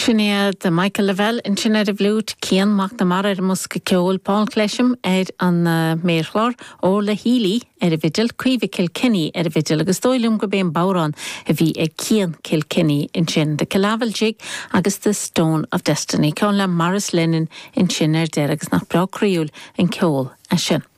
Sin iad Michael Lavelle ansin ar an bhfliúit, Cian McNamara ar an mbosca ceoil, Paul Clesham ar an méarchlár, Orla Healy ar an bhfidil, Caoimhe Kilkenny ar an bhfidil agus dóigh liom gurb é an bodhrán a bhí ag Cian Kilkenny ansin, The Killavil Jig agus The Stone of Destiny, ceann le Maurice Lennon ansin ar deireadh agus nach breá croíúil an ceol é sin.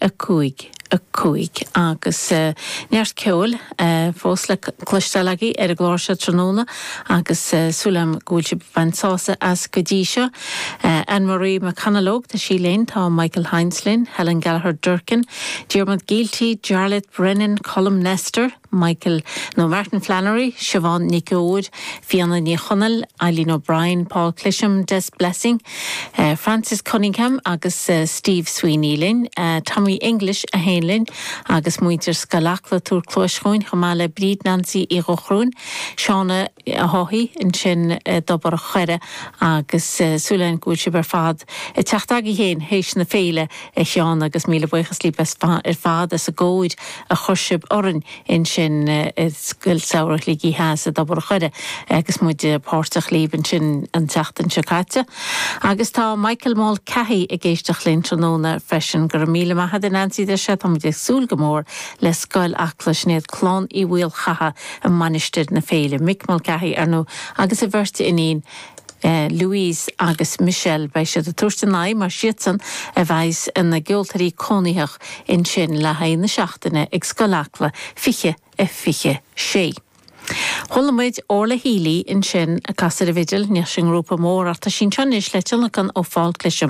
5, 5, agus neart ceoil fós le cloisteáil agaibh ar an gclár seo tráthnóna agus súil agam go bhfuil sibh ag baint sásamh as go dtí seo. Anne Marie McConalogue, tá sí linn, tá Michael Hynes linn, Helen Gallagher Durkin, Diarmuid Gielty, Jarlath Brennan, Colm Nestor, Michael, nó Martin Flannery, Siobhán Nic Fheoir, Fiona Ní Chonaill, Eileen O'Brien, Paul Clesham, Des Blessing, Francis Cunningham agus Steve Sweeney linn, Tommy English a sheinn linn agus muintir Scoil Acla ag tabhairt cluais dhúinn, chomh maith le Bríd Nansaí Uí Dhochrúin, Shauna, a thoghfaí ansin i dTobar a' Choire agus súil againn go bhfuil sibh ar fad ag teacht agaibh féin théis na féile a Sheáin agus míle buíochas libh ar fad as an gcóir a chuir sibh orainn ansin i Scoil Samhraidh Shligigh Theas i dTobar a' Choire agus muid páirteach libh ansin an tseachtain seo caite. Agus tá Michael Mulcahy ag éisteacht linn tráthnóna freisin. Go raibh míle maith agat Nancy deir sé, tá muid ag súil go mór le Scoil Acla, sin iad clann Uí Mhaolchatha, i Mainistir na Féile, Mick Mulcahy, ar ndóigh, agus a bheirt iníon Louise agus Michelle. Beidh siad ag tabhairt a n-aghaidh, mar siadsan a bheidhs ina gceoltóirí cónaitheach ansin, le haghaidh na seachtaine ag Scoil Acla 2026. Chuala muid Orla Healy ansin ag casadh ar an bhfidil. Níl sí i ngrúpa mór ach tá sí anseo anois le tionlacan ó Phaul Clesham.